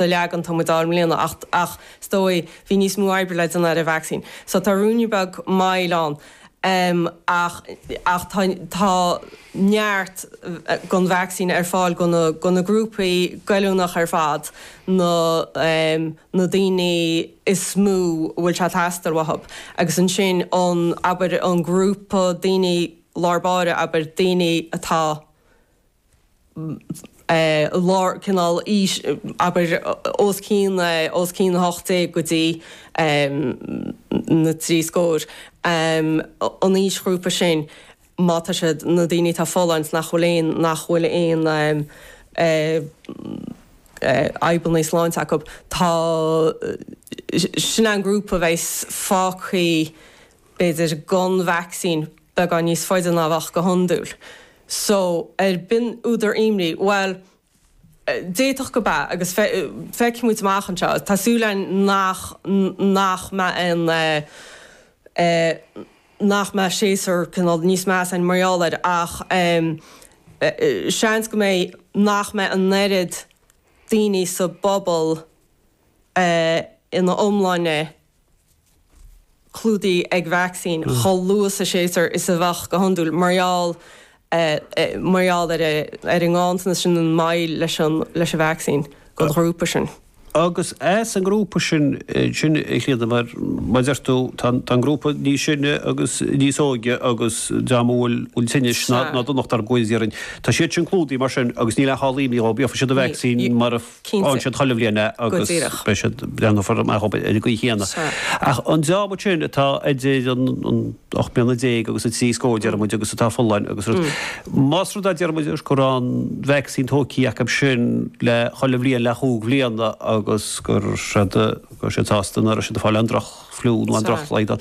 an leagan atá muid i mbliana ach ach is dóigh liom bhí níos mó oibre le déanamh ar an vacsaín so tá ruainne beag moill ann em ach ach tá tá neart don vacsaín ar fáil go na go na grúpaí goilliúnach ar fad na em na daoine is mó a bhfuil sé teastáil uathu agus ansin an abair an grúpa daoine lár báire abair daoine atá lár cineál aois, abair, os cionn, os cionn 18 go dtí na trí scór, an aoisghrúpa sin, má tá siad, na daoine atá folláin, nach bhfuil aon, nach bhfuil aon fhadhbanna sláinte acu, tá, sin an grúpa a bheidh fágtha b'fhéidir, gan vacsaín beagán níos faide ná a bheadh go hiondúil. So, ab in údar imní? Bhuel, d'fhéadfadh go mb'ea agus feicfidh muid amach anseo. Tá súil againn nach nach mbeidh aon eh nach mbeidh séasúr cineál níos measa againn mar gheall air ach em seans go mbeidh nach mbeidh an oiread daoine sa bpobal eh ina iomláine eh clúdaithe ag vacsaín chomh luath sa séasúr is a bheadh go hiondúil mar gheall ar an nganntanas sin an mhoill leis an vacsaín don ghrúpa sin. Agus as an ngrúpa sin sin, a Chlíodhna, mar a deir tú, tá an grúpa níos sine agus níos óige agus dream a bhfuil tinnis ná donacht orthu cosúil déarfainn, tá siad sin clúdaithe mar sin agus níl aon dá imní dóibh, gheobhaidh siad an vacsaín mar a fhaigheann siad chuile bhliain é agus beidh siad, breathnófar amach ar an gcaoi chéanna. Ach an dream sin atá idir an ocht mbliana déag agus an trí scór, deir muid, agus atá folláin agus rud, más rud é, deir muid, go raibh an vacsaín tógthaí acu sin le chuile bhliain le chúig bhliana agus go raibh siad sásta nach raibh siad ag fáil aon drochfhliú nó aon drochshlaghdán,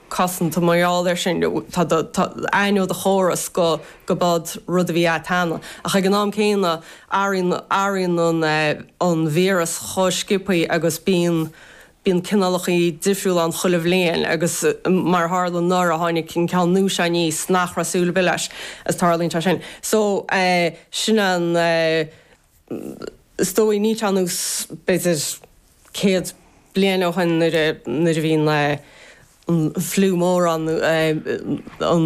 cosanta mar gheall air sin. Tá do aithne ó do chóras gob é an rud a bhí cheana. Ach ag an am céanna athraíonn an víreas chomh sciobthaí agus bíonn bíonn cineálachaí difriúla ann chuile bhliain agus mar a tharla nuair a tháinig an ceann nua seo aníos nach raibh súil ar bith leis. Is tarlaíonn sé sin. So sin an is dóigh, ní tá a fhios agat b'fhéidir céad bliain ó shoin nuair a nuair a bhí na an fliú mór ann nó an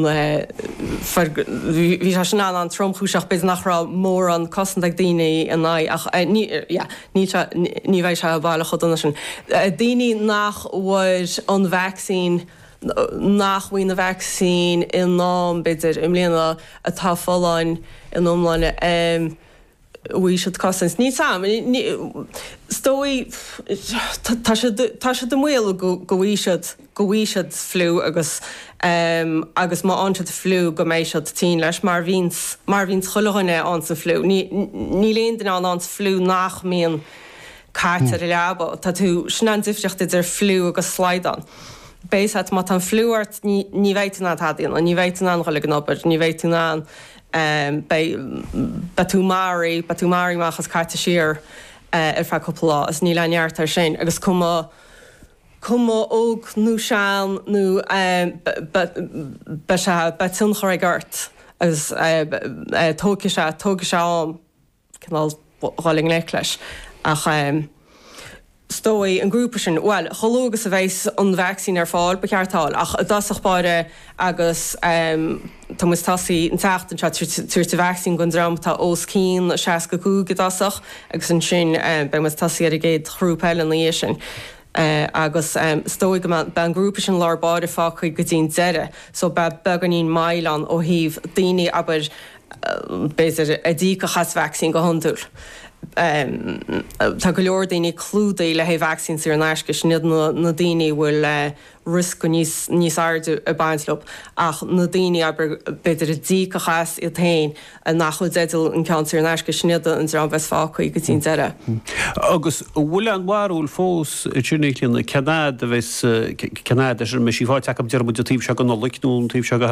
fer bhí sé sin an tromchúiseach b'fhéidir nach raibh mórán cosanta ag daoine in aghaidh ach ní yeah níl sé ní bheidh sé baileach chomh dona sin daoine nach bhfuair an vacsaín nach bhfaighidh an vacsaín in am b'fhéidir i mbliana atá folláin in iomláine. bhfuair siad cosaint níos luaithe. Is dóigh tá siad i mbaol go bhfaighidh siad, go bhfaighidh siad fliú agus, agus má fhaigheann siad fliú go mbeidh siad tinn leis mar bhíonns, mar bhíonns chuile dhuine a fhaigheanns an fliú. Níl aon duine a fhaigheanns an fliú nach mbíonn caite ar a leaba. Tá tú, sin an difríocht idir fliú agus slaghdán. Basically má tá an fliú ort ní, ní bheidh tú in ann tada a dhéanamh, ní bheidh tú in ann dul ag an obair, ní bheidh tú in ann. beidh, beidh tú maraithe, beidh tú maraithe amach is caite siar ar feadh cúpla lá is níl aon neart air sin agus cuma, cuma óg nó sean nó beidh, beidh sé, beidh tionchar aige ort agus tógfaidh sé, tógfaidh sé am. cineál dhul i ngleic leis ach is dóigh an grúpa sin, bhuel chomh luath agus a bheidh an vacsaín ar fáil ba cheart é a fháil ach i dtosach báire agus tá muid ag tosaí an tseachtain seo ag tabhairt an vacsaín don dream atá os cionn 65 i dtosach agus ansin beidh muid ag tosaí ar an gcéad ghrúpa eile ina dhiaidh sin agus is dóigh go mbeidh an grúpa sin lár báire fágtha go dtí an deireadh so beidh beagáinín moill ann ó thaobh daoine, abair, b'fhéidir, a d'íocfadh as vacsaín go hiondúil. Tá go leor daoine clúdaithe le haghaidh vacsaín saor in aisce, sin iad na daoine a bhfuil riosca níos airde ag baint leo, ach na daoine, abair, b'fhéidir, a d'íocfadh as iad féin nach bhfuil i dteideal an ceann saor in aisce, sin iad an dream a bheas fágtha go dtí an deireadh. Agus an bhfuil aon bharúil fós, i dtaobh na bliana, cén fhad a bheas, cén fhad go mbeidh sí faighte acu, déarfaidh muid, an taobh seo den Nollaig nó an taobh seo de.